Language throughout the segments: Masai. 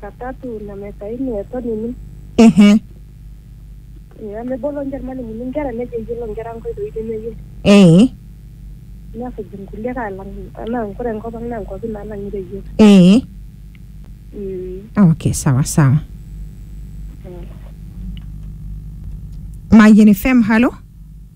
katatu na mesa ini eton ini ehe nemebolo ninche irmalimuni inkera nejo eyiolo inkera nkoitoi nemeyiolo ee nesuj inkulie alang anaa nkure enkop ang naa nkuapi naalang'ita eyiolo ee Mm, okay sawa sawa mm. mayian fm halo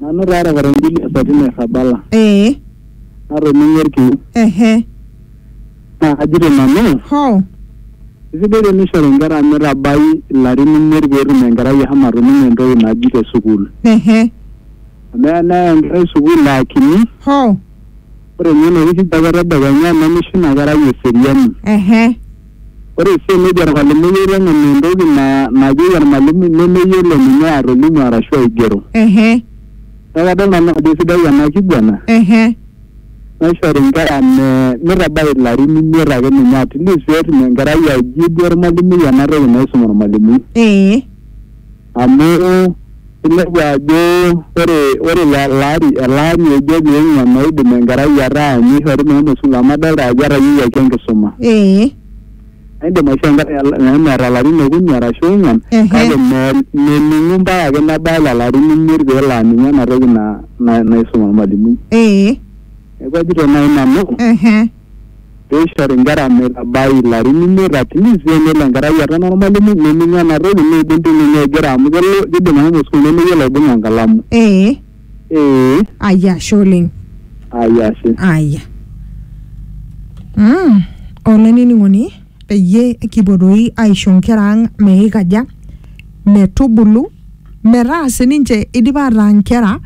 Nanu taa taata enjili e sati nairrabala Ee. natoning'o olkiu. Ehe. Naa kajito nanu. Hoo. Eisidai teneishori nkera meitabai ilarin imiet pee etum enkerai ashomo atoning'o entoki naji te sukuul. Ehe. Amu eya neya enkerai sukuul aa kini. Hoo. Ore ninye enoshi kijape e tedekenya nemeisho ina kerai eseriani. Ehe. Ore sii enejo ormalimui aiteng'eni entoki na- najoki ormalimui nemeyiolo ninye atolimu arashu aigero. Ehe. Neeku kadol nanu ajo sidai ena kiguana Ehe. naishori nkera me mitabai ilarin imiet ake ninye at least peetum enkerai aijibu ormalimui ena toki naisum ormalimui. Ee. amu inepu ajo ore ore elaari elaari ojo pee eng'uan oidim enkerai ataa ninye eishori mehomo sukuul amu adolta ajo etayiewuaki enkisuma ee aidim aishoo enkerai al- mehomo eeta ilarin okuni arashu ong'uan Ehe. kake me- mening'u mpaka ake nebaya lelo arin imiet peelo aning'u ena toki na- na- naisum ormalimui ee neeku ajito naaji nanu ehe peishori nkera metabai ilarin imiet at least penelo enkerai aton ormalimui nening ena toki neidim ti ninye aigero amu kelo kidim ashomo sukuul nemeyiolo aibung'a enkalamu ee ee aya ashe oleng ai ashe aya mm. olainining'oni peyie kipuo doi aisho nkera ang meikaja metubulu metaa sininche idipa ataa nkera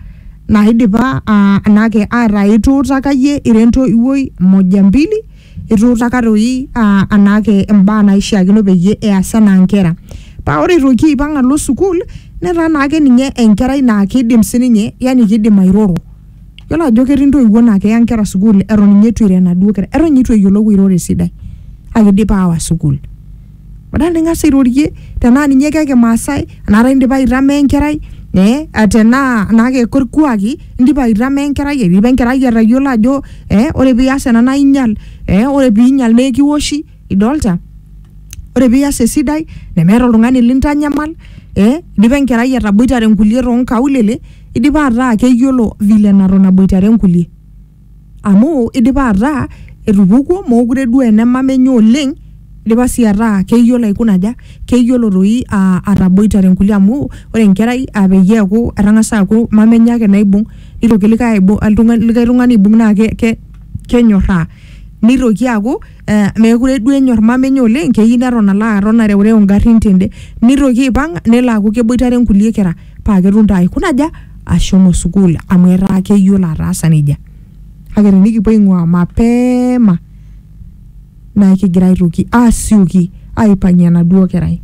naidipa aa anake ataa ituutaka iyie ira entoiwuoi moja mbili ituutaka toi aa anake imbaa naishiakino peyie eas anaa nkera paa ore itoki aipang alo sukuul netaa naake ninye enkerai naa kidim sininye yani kidim airoro yiolo ajo ketii intoiwuo naa keya inkera sukuul eton inye itu iro enaduo kerai eton inye itu eyiolou airoro esidai kake idipa awa sukuul. badala ning'as airorie tenaa ninye keke maasai anaata indipa aitama enkerai eh, ah, tenaa anaa keko irkuaki indipa aitama enkerai eidipa enkerai atayiolo ajo eh, ore pias ena naa inyial eh, ore piinyial naa ekiwoshi idolta ore pias esidai nemeeta oltung'ani lintanyamal eh, idipa enkerai ataboitare nkulie tonkaulele idipa ataa keyiolo vile naton aboitare nkulie. amu idipa ataa etupukuo mokure duo ene mama enye oleng idipa sii ataa keyiolo aikuna aja keyiolo doi uh ataboitare inkulie amu ore enkerai uh peyie eeku etang'asa aaku mama enye ake naibung nitoki likae aibung oltung'ani likae tung'ani aibung naa ke ke kenyorraa nitoki aaku eh mekure duo enyorr mama enye oleng keyieu neton alo aton areurew ingarrin tende nitoki aipang nelo aaku keboitare inkulie kera. paa ketum taa aikuna aja ashomo sukuul amu etaa keyiolo ataasa nejia kake tenikipuo aing'ua mapema naa kigira aitoki asioki aipang'ie enaduo kerai.